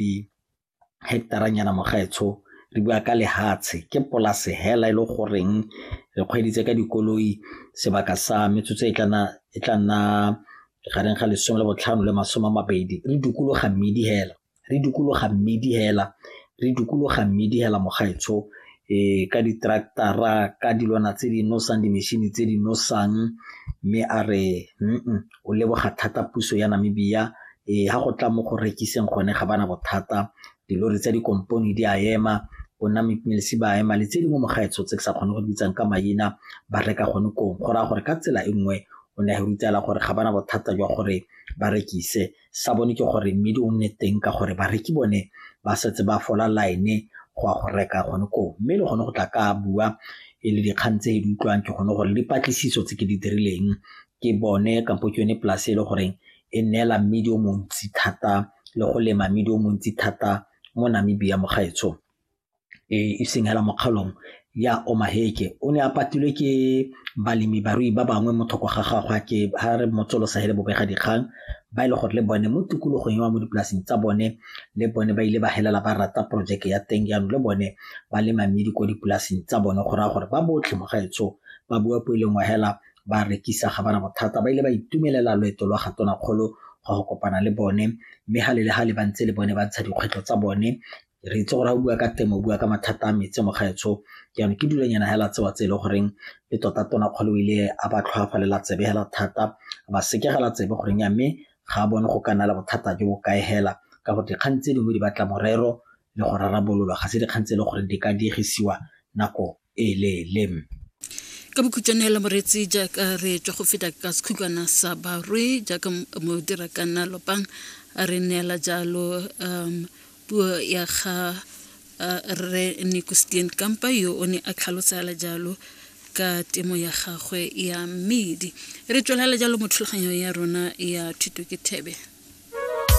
di-hectare-nyana mo gaetsho re bua ka lefatshe ke polase fela e le goreng re kgweeditse ka dikoloi sebaka sa metsotso e tla nna gareng ga lesome le botlhano le masome a mabedi re dikologa mmidi fela re dikologa mmidi fela re dikologa mmidi fela mo gaetsho um ka di-tractor-ra ka dilwana tse di nosang di-machine tse di nosang mme a re . o leboga thata puso ya Namibia e ha go tla mo go rekiseng gone ga bana bothata dilori tsa dikompone di a ema bona mipmelesi ba ema le tse dingwe mo gaetsho tse ke sa kgone go di bitsang ka maina ba reka gone kong go raya gore ka tsela e nngwe o ne a rutela gore ga bana bothata jwa gore ba rekise sa bone ke gore mmidi o nne teng ka gore bareki bone ba setse ba fola line go a go reka gone koo mme le gone go tla ka bua e le dikgang tse di utlwang ke gone gore dipatlisiso tse ke di dirileng ke bone kampo ke yone polase e le goreng e neela mmidi o montsi thata le go lema mmidi o montsi thata mo Namibia mo gaetsho e, e seng hela mo kgaolong ya Omaheke o ne a patilwe ke balemi barui ba bangwe mo thoko ga gagwe ke ha re motsolosa hele bobega dikgang ba ile e gore le bone mo tikologong ya mo dipolaseng tsa bone le bone ba ile ba helela ba rata projeke ya teng jaanong le bone ba lema mmidi ko dipolaseng tsa bone go raya gore ba botlhe mo gaetsho ba bua po e lengwe hela ba rekisa ga bana bothata ba ile ba itumelela loeto lwa ga tonakgolo go go kopana le bone mme ga le le ga le ba ntse le bone ba ntsha dikgwetlho tsa bone re itse gore ga o bua ka temo o bua ka mathata a metse mo gaetsho jaanong ke dulanyana hela tsewa tse e le goreng le tota tona kgolo o ile a ba tlhoafalela tsebe hela thata ba sekegela tsebe goreng ya mme ga a bone go ka nna le bothata jo bo kae hela ka gore dikgang tse dingwe di batla morero le go rarabololwa ga se dikgang tse e le gore di ka diegisiwa nako e leele ka bokhutšwane hela moreetsi jaaka re tswa go feta ka sekhukwana sa barwe jaaka mo dira ka nna lopang a re neela jalo um puo ya ga uh, re nicostien kampa yo o ne a tlhalosela jalo ka temo ya gagwe ya mmedi re tswelela jalo mo thulaganyong ya rona ya thuto ke thebe